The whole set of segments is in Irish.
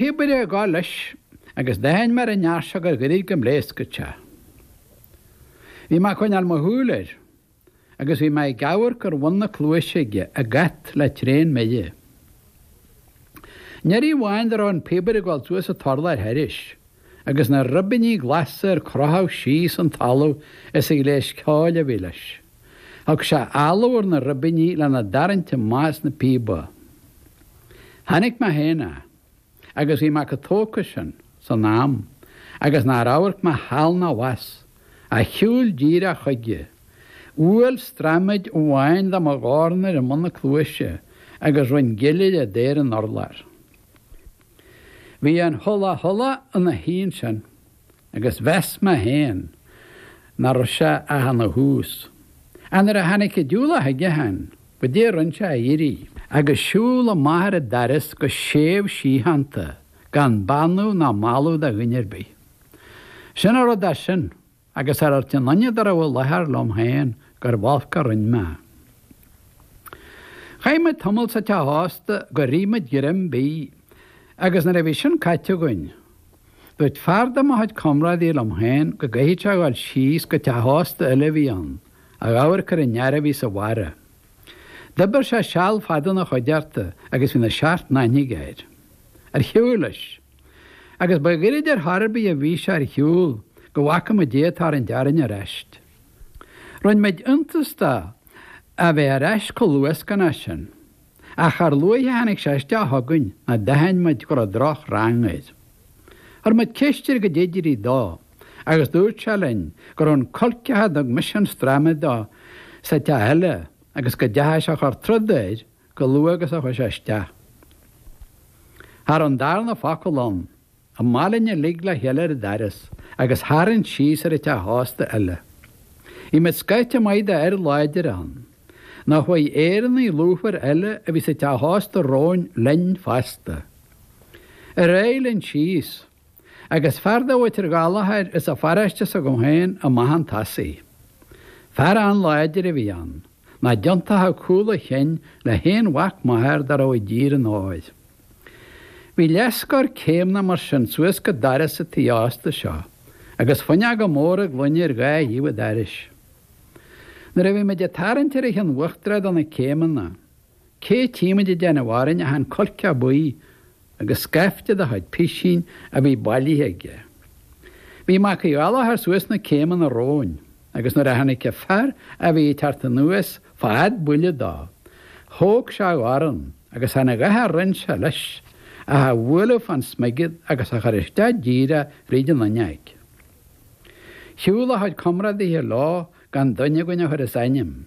píobaire ag gabháil leis agus d'aithin mé ar an fhear seo gur ghoirid go bpléascfadh sé. Bhí mé ag coinneáil mo shúil air agus bhí mé ag amharc ar bhun na cluaise aige, ag at le tréan mire. Aon iarraidh amháin dá raibh an píobaire ag dul suas an t-urlár thairis, agus na ribíní glasa ar crochadh síos an talamh as an ghléas ceoil a bhí leis. Thug sé áladh ar na ribíní lena dtarraingt amach as na píoba. Chonaic mé féin é agus bhí mé chomh tógtha sin, san am, agus nár amharc mé thall ná abhus, ach shiúil díreach chuige. Bhuail straiméad amháin de mo dhorn air i mbun na cluaise agus rinn gillire de ar an urlár. Bhí an 'hula hula' ina shuí ansin. agus mheas mé féin nach raibh sé ach ina thús. Ach nuair a tháinig an diúlach chuige féin, goidé a rinn sé ach éirí, agus siúl amach ar an doras go séimh síochánta gan beannú ná mallú do dhuine ar bith. Sin a raibh de sin, agus char dhúirt aon duine dá raibh i láthair liom féin gurbh olc a rinn mé. Chaith muid tamall sa teach ósta gur ith muid greim bídh, agus nuair a bhí sin caite againn, Dúirt fear de mo chuid comrádaí liom féin go gcaithfeadh sé dhul síos go teach ósta eile a bhí ann, a dh'amharc ar an fhear a bhí sa bharra. D'oibir sé seal fada ina chuideachta agus bhí na seacht n-aithne aige air. Ar shiúil leis. Agus ba ghoirid ar chor ar bith a bhí sé ar shiúl go bhfaca muid é ag tarraingt orainn ar aist. Rinne muid iontas de é a bheith ar aist chomh luascánach sin. Ach char luaithe a tháinig sé isteach chugainn ná d'aithin muid go raibh droch rang air. Chuir muid ceist air goidé a d'éirigh dó agus dúirt sé linn go raibh an coirceach a dtug mise an straiméad dó sa teach eile agus go dteachaigh sé a chur troda air chomh luath agus a chuaigh sé isteach. Ar an darna focal ann. Amach linn uilig le chéile ar an doras agus tharraing síos ar an teach ósta eile. Bhí muid scaifte maith d'fhir láidre ann. Nó chuaigh Éireannaigh lúfara eile a bhí sa teach ósta romhainn linn fosta. Ar aghaidh linn síos. Agus fear de mhuintir Ghallachair as an pharóiste s'agam féin amach chun tosaigh. Fear an-láidir a bhí ann. Nach dtiontódh cúl a chinn le haon mhac máthar dá raibh i dTír an Óir. Bhí leathscór céimeanna mar sin suas go doras an tí ósta seo agus fuinneoga móra gloine ar dhá thaobh an dorais. Nuair a bhí muid ag tarraingt ar an chionn uachtarach de na céimeanna, cé tímid ag déanamh orainn ach an coirce buí agus scaifte dá chuid pisín a bhí bailithe aige. Bhí Mac Uí Ghallachair suas na céimeanna romhainn. Agus nuair a tháinig an fear a bhí ag teacht anuas fad buille dó, thóg sé a dhorn agus cha dtearn a dhath ar an tsaol leis, ach a bhualadh fán smigead agus a chur isteach díreach fríd an fhuinneoig. Shiúl a chuid comrádaithe leo gan duine againn a chur as ainm,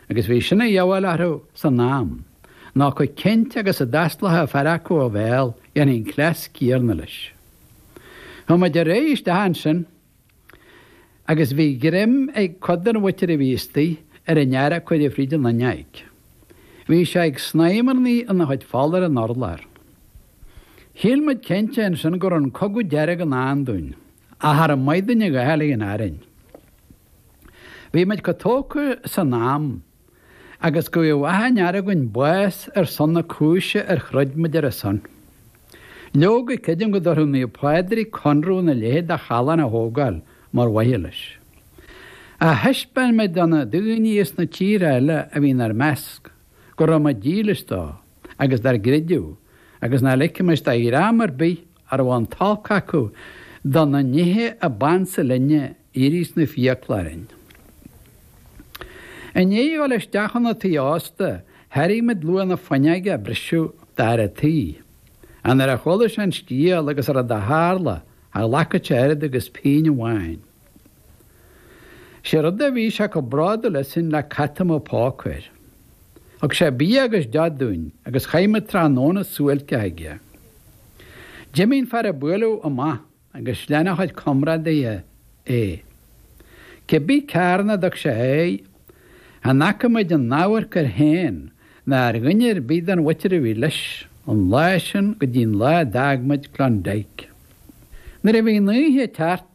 agus bhí sin a dhíobháil orthu san am, ná chomh cinnte agus a d'fhosclóchadh fear acu a bhéal, dhéanfaí an cleas céanna leis. Chuaigh muid ar aghaidh isteach annsin Agus bhí greim ag cuid de na waiterí a bhí istigh ar an fhear a cuireadh fríd an fhuinneoig. Bhí sé ag snaidhmearnaí ina chuid fola ar an urlár. Shíl muid cinnte ansin go raibh an cogadh dearg i ndán dúinn, ach ar an Maighdean a ghearrfaidh an fhearainn. Bhí muid chomh tógtha san am agus go bhfaigheadh achan fhear againn bás ar son na cúise ar throid muid ar a son. Leoga, creidim go dtabharfadh Naomh Pádraig conradh ina leithéid de challán a thógáil mar mhaithe leis. Ach thaispeáin muid do na daoine as na tíortha eile a bhí inár measc go raibh muid dílis dó agus dár gcreideamh agus nach ligfimis do dhream ar bith a raibh an t-olc acu do na nithe a b'ansa linne éirí sna fiacla orainn. I ndiaidh a dhul isteach 'na tí ósta, thairg muid luach na fuinneoige a briseadh d'fhear a' tí. Nuair a chuala sé an scéal agus an rud a tharla, cha ghlacfadh sé oiread agus pingin amháin. 'Sé rud a bhí sé chomh bródúil asainn le cat a mbeadh póca air. Thug sé bia agus deoch dúinn agus chaith muid tráthnóna suáilceach aige. D'imigh an fear a buaileadh amach. agus lean a chuid comrádaithe é. Cé bith cearn a dtug sé a aghaidh, chan fhaca muid aon amharc air féin ná ar dhuine ar bith den mhuintir a bhí leis, ón lá sin go dtí'n lá a d'fhág muid Klondike. Nuair a bhí an oíche ag teacht,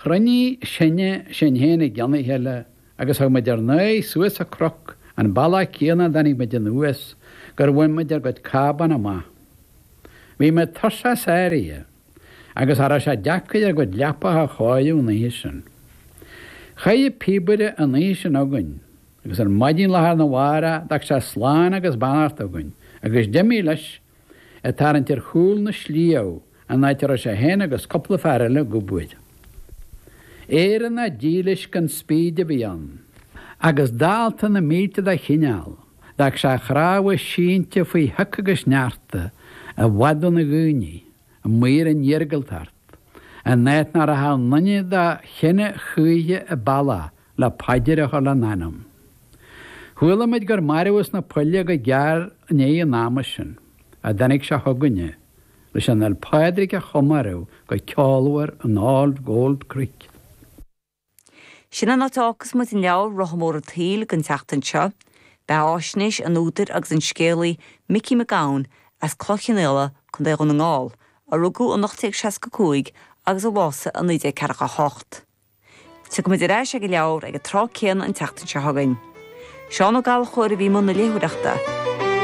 chruinnigh sinne sinn féin i gcionn a chéile agus thug muid ár n-aghaidh suas an cnoc, an bealach céanna a dtáinig muid anuas, gur bhain muid ar gcuid cábán amach. Bhí muid tuirseach sáraithe. agus cha raibh sé deacair ár gcuid leapacha a chóiriú an oíche sin. Chaith an píobaire an oíche sin againn agus ar maidin lá arna mhárach d'fhág sé slán agus beannacht againn agus d'imigh leis ag tarraingt ar chúl na sliabh an áit a raibh sé fhéin agus cupla fear eile ag obair. Éireannach dílis gan spíd a bhí ann. Agus dalta na mílte dá chineál. D'fhág sé a chnámha sínte faoi shioc agus sneachta, i bhfad óna dhaoine, amuigh ar an iargúltacht, in áit nach rachadh aon duine dá chine choíche an bealach le paidir a chur lena anam. Chuala muid gur marbhadh sna poill é go gearr i ndiaidh an ama sin, a dtáinig sé chugainne, leis an Fhéil Pádraig a chomóradh go ceolmhar in All Gold Creek. Sin an áit a fhágfas muid an leabhar Rotha Mór an tSaoil don tseachtain seo. Beathaisnéis an údair agus an scéalaí Micí Mac Gabhann as Cloich Chionnaola, Co. Dhún na nGall, a rugadh in 1865 agus a bhásaigh in 1948. Tiocfaimid ar ais ag an leabhar ag an tráth céanna an tseachtain seo chugainn. Seán Ó Gallchóir a bhí i mbun na léitheoireachta.